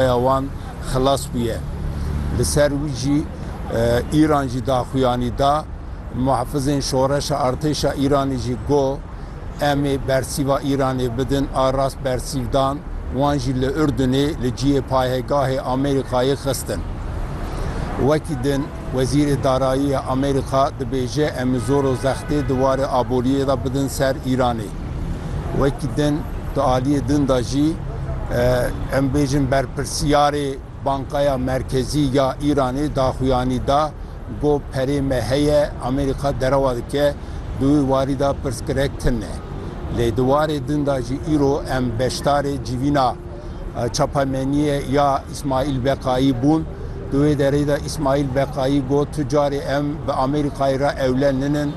Rêya wan xilas bûye. Li ser wî jî Îran jî daxuyanî da. Muhafizên Şoreşa Artêşa Îranê jî got, Em ê bersîva Îranê bidin a rast bersîv dan, wan jî li Urdunê li cihê payegahê Amerîkayê xistin. Wekî din Wezîrê Darayî ya Amerîka dibêje em ê zor û zextê di warê aboriyê de bidin ser Îranê. Wekî din di aliyê din de jî em bêjin berpirsiyarê Bankaya Merkezî ya Îranê daxuyanî da ku perê me heye Amerîka derewa dike di wî warî de pirsgirêk tune. Lê di warê din de jî îro em beşdarê civîna çapemeniyê ya Îsmaîl Beqayî bûn. Di wê derê de Îsmaîl Beqayî got tu carê em bi Amerîkayê re ewle ninin.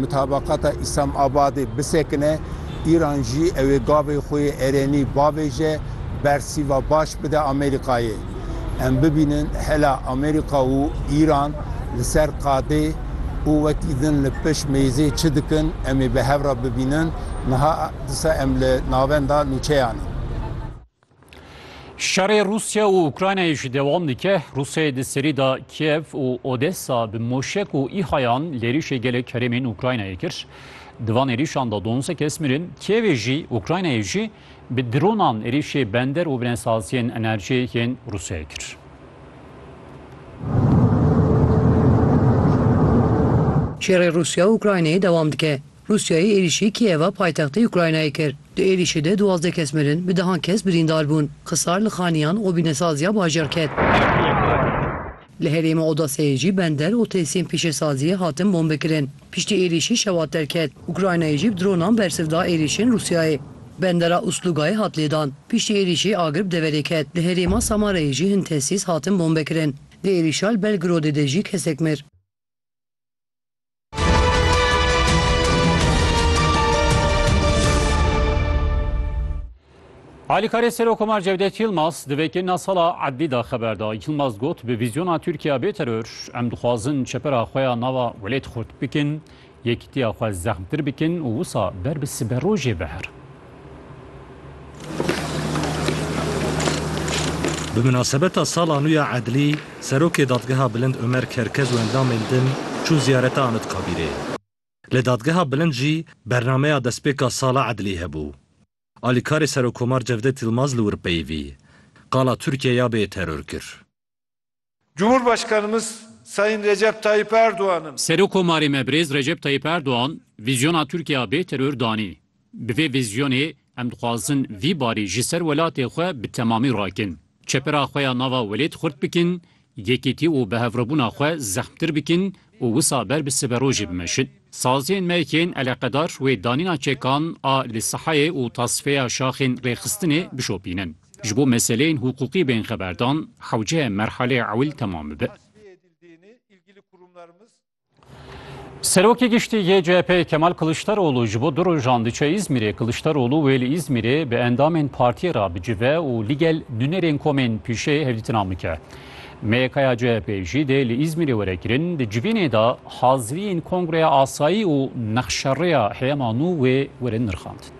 Mutabaqata Îslam Abadê bisekine, Îran jî ew ê gavê xwe yê erênî bavêje, bersîva baş bide Amerîkayê. Em bibînin hela Amerîka û Îran li ser qadê û wekî din li pişt mêzê çi dikin, em ê bi hev re bibînin. Niha disa em li navenda nûçeyan in. Şerê Rûsya û Ukraynayê jî dewam dike. Rûsyayê di serî de Kiev û Odessa bi moşek û îhayan lêrîşê gelek herêmên Ukraynayê kir. Di van êrîşan de duwanseh kes mirin. Kievê jî Ukraynayê jî bi dronan êrîşê bender û binesaziyên enerjiyê yên Rûsyayê kir. Şerê Rûsya û Ukraynayê dewam dike. Rûsyayê êrîşî Kîeva paytextê Ukraynayê kir. Di êrîşê de duwazdeh kes mirin, bi dehan kes birîndar bûn. Xisar li xaniyan û bînesaziya bajêr ket. Li herêma Odeseyê jî bender û tesîyên pîşesaziyê hatin bombekirin. Piştî êrîşî şewat derket. Ukraynayê jî bi dronan bersiv da êrîşên Rûsyayê. Bendera Uslugayê hat lêdan. Piştî êrîşî agir bi deverê ket. Li herêma Samarayê jî hin tesîs hatin bombekirin. Di êrîşa li Belgorodê de jî kesek mir. Alîkarê Serokkomar Cevdet Yilmaz di vêkirina sala edlî da xeber da. Yilmaz got bi vîzyona Tirkiya bê teror em dixwazin çepera xwe ya nava welêt xurt bikin, yekîtiya xwe zexmtir bikin û wisa ber bi siberojê veherin. Bi minasebeta sala nû ya Edlî, Serokê Dadgeha Bilind Omer Kerkez û endamên din çûn ziyareta Anitkabîrê. Li Dadgeha Bilind jî bernameya destpêka sala Edlî hebû. Alîkarê Serokkomar Cevdet Yilmaz li wir peyivî, qala Tirkiye ya bê yê teror kir. Cumhurbaşkanımız Sayın Recep Tayyip Erdoğan'ın. Serokomarê me birêz Recep Tayyip Erdoğan vîzyona Tirkîya bê teror danî. Bi vê vîzyonê em dixwazin vî barî ji ser welatê xwe bi temamî rakin. Çepera xwe ya nava welêt xurt bikin, yekîtî û bihevrebûna xwe zehmtir bikin, Û wisa ber bi siberojê bimeşin. Saziyên me yên eleqedar wê danîna çekan a li sehayê û tasfeya şaxên rêxistinê bişopînin. Ji bo meseleyên huqûqî bên xeberdan, hewce merhaleyê ewil temam bibe. Serokê Giştî yê CHP'ê Kemal Kiliçdaroglu ji bo du rojan diçe Îzmîrê. Kiliçdaroglu wê li Îzmîrê bi endamên partiyê re bicive û ligel nûnerên komên pîşê hevdîtina bike. MYKya CHP'ê jî dê li Îzmîrê were kirin, di civînê de haziriyên Kongreya Asayî û nexşerêya heyema nû wê werin nirxandin.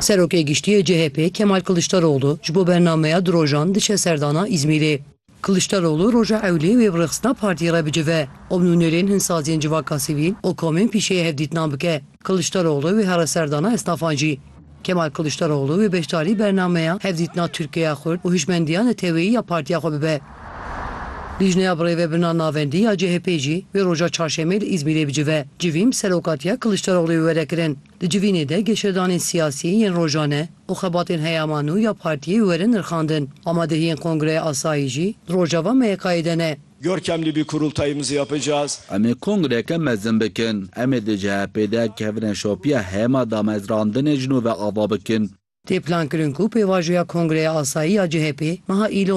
Serokê Giştî yê CHP'ê Kemal Kiliçdaroglu ji bo bernameya di rojan diçe serdana Îzmîrê. Kiliçdaroglu roja ewlê wê bi rêxistina partiyê re bicive û bi nûnerên hin saziyên civaka sivîl û komên pîşeyê hevdîtinan bike. Kiliçdaroglu wê here ser dana esnafan jî. Kemal Kiliçdaroglu wê beşdarî bernameya hevdîtina Tirkiyeya Xurt û hişmendiya neteweyî ya partiya xwe bibe. Lîjneya Birêve Birna Navendî ya CHP'ê jî wê roja çarşemê li Îzmîrê bicive. Civîn bi serokatiya Kiliçdarogluê were kirin. Di civînê de geşedanên siyasî yên rojane û xebatên heyama nû ya partiyê werin nirxandin. Amadehiyên Kongreya Asayî jî di rojava MYK'ê de ne. Görkem Libî Kurultayımızı yapacağız. Em ê kongreke mezin bikin. Em ê di CHP'ê de kevine şopiya heyama damezrandinê ji nû ve ava bikin. Tê plankirin ku pêvajoya Kongreya Asayî ya CHP'ê meha Îlonê,